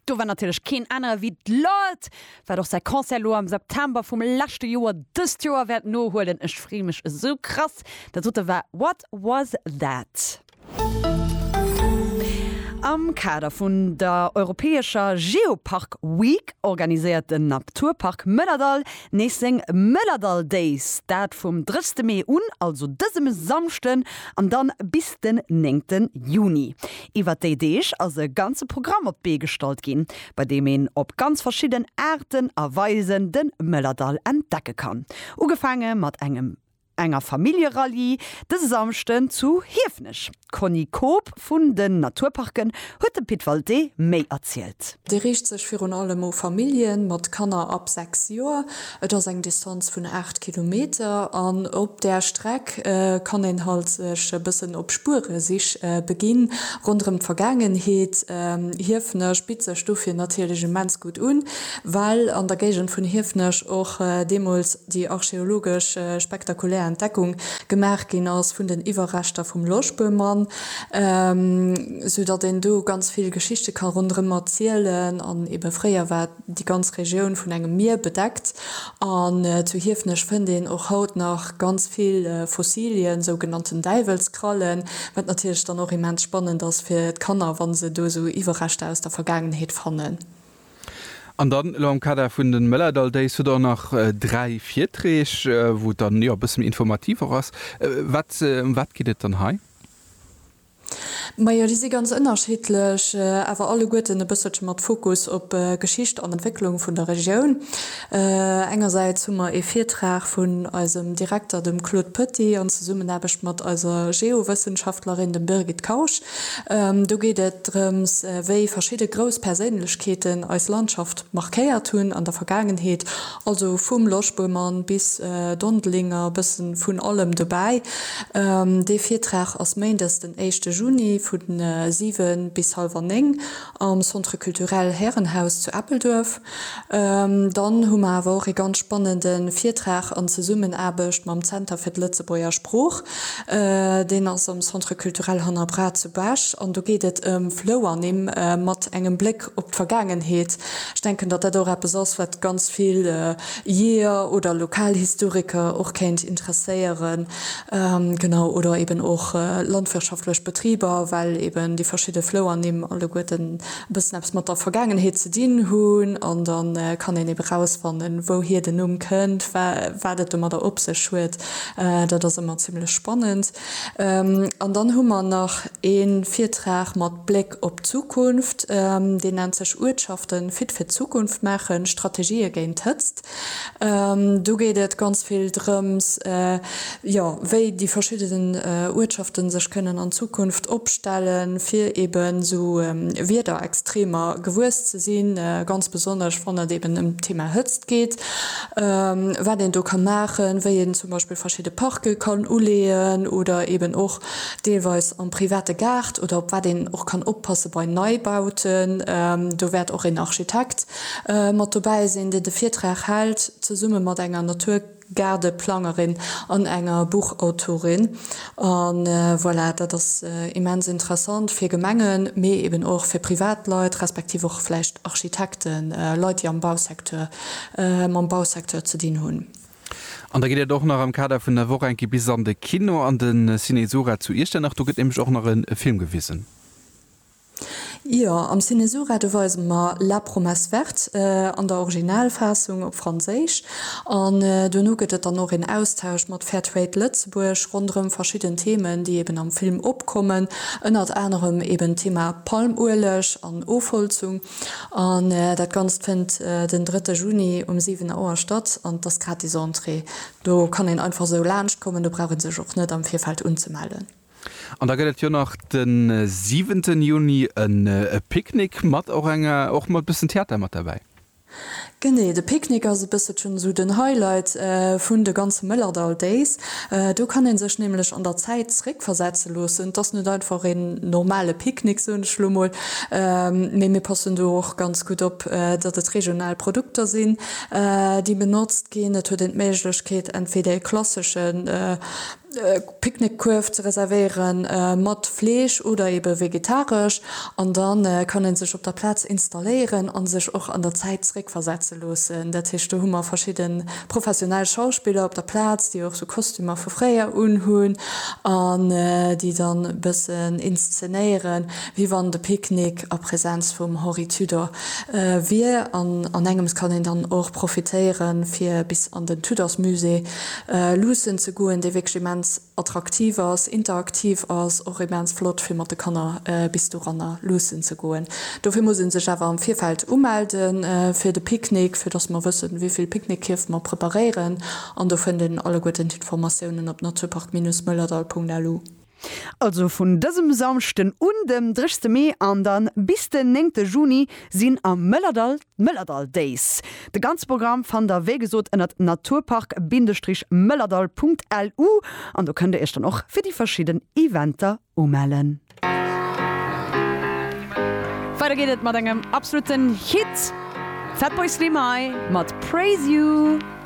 Do war natierlech keen anere wéi d'Lorde, wat och säi Concert elo am September vum leschte Joer dëst Joer wäert nohuelen. Ech free mech esou krass. Dat dote war What Was That? Am Kader vun der europäescher Geopark Week organiséiert den Naturpark Mëllerdall nees seng Mëllerdall Days. Dat vum 30 Mee un, also dësem Samschden, an dann bis den 9 Juni. Iwwert déi Deeg ass e ganze Programm op d'Bee gestallt ginn, bei deem een op ganz verschidden Aarten a Weisen de Mëllerdall entdecke kann. Ugefaange mat engem enger Familljerallye dëse Samschden zu Hiefenech. D'Conny Koob vun den Naturparken huet dem Pit Walté méi erzielt. Dee riicht sech virun allem u Famillje mat Kanner ab 6 Joer. Et ass eng Distanz vun 8 Kilometer an op där Streck kann een halt sech e bëssen op Spueresich beginn ronderëm d'Vergaangenheet. Hiefenech bitt sech dofir natierlech immens gutt un, well an der Géigend vun Hiefenech och deemools déi archeologesch spektakulär Entdeckung gemaach ginn ass vun den Iwwerreschter vum Loschböhmann, sou datt een do ganz vill Geschichte ka ronderëm erzielen an ebe fréier war déi ganz Regioun vun engem Mier bedeckt, an zu Hiefenech fënnt een och haut nach ganz vill Fossilien, sougenannten Däiwelskrallen, wat natierlech dann och immens spannend ass fir d'Kanner, wa se do esou Iwwerreschter aus der Vergaangenheet fannen. An dann elo am Kader vun de Mëllerdall Days hutt Der och nach dräi Virträg, wou et dann jo e bësse méi informativ och ass. Wat, ëm wat geet et dann hei? Majo, déi si ganz ënnerschiddlech, awer alleguerten e bësselche mat Fokus op Geschicht an Entwécklung vun der Regioun. Engersäits hu mer ee Virtrag vun eisem Direkter, dem Claude Petit, an Zesummenaarbecht mat eiser Geowëssenschaftlerin, dem Birgit Kausch. Do geet et drëms, wéi verschidde grouss Perséinlechkeeten eis Landschaft markéiert hunn an der Vergaangenheet Also vum Loschböhmann bis Dondelinger, bëssen vun allem dobäi. Dee Virtrag ass Méindes den éischte Juni vu 7 bis halwer 9 am Centre Culturel Härenhaus zu Eppelduerf. Dann hu mer awer och ee ganz spannende Virtrag an Zesummenaarbecht mam Zenter fir d'Lëtzebuerger Sprooch. Deen ass am Centre Culturel Hanner Braat zu Bech an do geet et ëm Flouernimm mat engem Bléck op d'Vergaangenheet. Ech denken, datt dat och eppes ass, wat ganz vill Jeeër oder Lokalhistoriker och kéint interesséieren, genau, oder eben och landwirtschaftlech Betriber, well eben déi verschidde Flouernimm alleguerten e bëssen eppes mat der Vergaangenheet ze dinn hunn. An da kann een ebe rausfannen, wouhier den Numm kënnt, wa wat et domadder op sech huet. Dat ass ëmmer zimmlech spannend. An dann hu mer nach ee Virtrag mat Bléck. op d'Zukunft, deen nennt sech Uertschaften fit fir d'Zukunft maachen, Strategië géint d'Hëtzt. Do geet et ganz vill drëms, jo, wéi déi verschiddenen Uertschaften sech kënnen an Zukunft opstellen, fir eben esou Wiederextremer gewuess ze sinn, ganz besonnesch wann et eben ëm d'Thema Hëtzt geet, wat een do ka maachen, wéi een zum Beispill verschidde Parke kann uleeën oder eben och deelweis am private Gaart oder op wat een och kann oppasse bei Neibauten. Do wäert och een Architekt mat dobäi sinn, deen de Virtrag hält, zesumme mat enger Naturgaardeplangerin an enger Buchautorin. A voilà, dat ass immens interessant fir Gemengen, mee eben och fir Privatleit, respektiv och vläicht Architekten, Leit, déi am Bausecteur, mam Bausecteur ze dinn hunn. An da geet et och nach am Kader vun der Woch enke bis an de Kino, an de Cinesura zu Iechternach. Do gëtt nämlech och nach e Film gewisen. Jo, am Cinesura, do weise mer La promesse verte an der Originalfaassung op Franséisch. An duerno gëtt et dann och een Austausch mat Fair Trade Lëtzebuerg ronderëm verschidden Themen, déi eben am Film opkommen, ënnert anerem eben d'Thema Palmueleg an Ofholzung. An dat Ganzt fënnt den drëtte Juni um 7 Auer statt an et ass gratis Entrée. Do kann een einfach esou laanscht kommen, do brauch ee sech och net am Virfeld unzemellen. An da gëtt et jo nach den siwenten Juni e Picknick mat och enger, och mat bëssen Theater mat derbäi. Genee, de Picknick ass e bësselchen esou den Highlight vun de ganze Mëllerdall Days. Do kann ee sech nämlech an der Zäit zréckversetze loossen. Et ass net einfach een normale Picknick, soen ech elo mol, mee mir passen do och ganz gutt op, datt et regional Produkter sinn, déi benotzt ginn. Et huet een d'Méiglechkeet, entweder e klassesche. Picknickkuerf ze reservéieren, mat Fleesch oder eben vegetaresch, an dann kann een sech op der Platz installéieren an sech och an der Zäit zréck versetzen loossen. Dat heescht do hu mer verschidden professionell Schauspiller op der Platz déi och sou Kostümer vu fréier un hunn an déi dann e bëssen inszenéieren wéi wann de Picknick a Präsenz vum Henri Tudor wier. An an engems kann een dann och profitéieren fir bis an den Tudorsmusée luussen ze goen, déi wierklech immens attraktiv ass, interaktiv ass, och immens flott fir mat de Kanner bis doranner luussen ze goen. Dofir muss ee sech awer am Virfeld umelde fir de Picknick, fir datt mer wëssen, wéi vill Picknickkierf mer preparéieren. An do fënnt een alleguerten d'Informatiounen op naturpark-moellerdall.lu. Also vun dësem Samschden un, dem 30 Mee an dann bis den 9 Juni sinn am Mëllerdall d'Mëllerdall Days. De ganze Programm fannt der wéi gesot ënnert naturpark-mëllerdall.lu an do kënnt der iech dann och fir déi verschidden Eventer umellen. Weider geet et mat engem absoluten Hit, Fatboy Slim hei mat Praise You.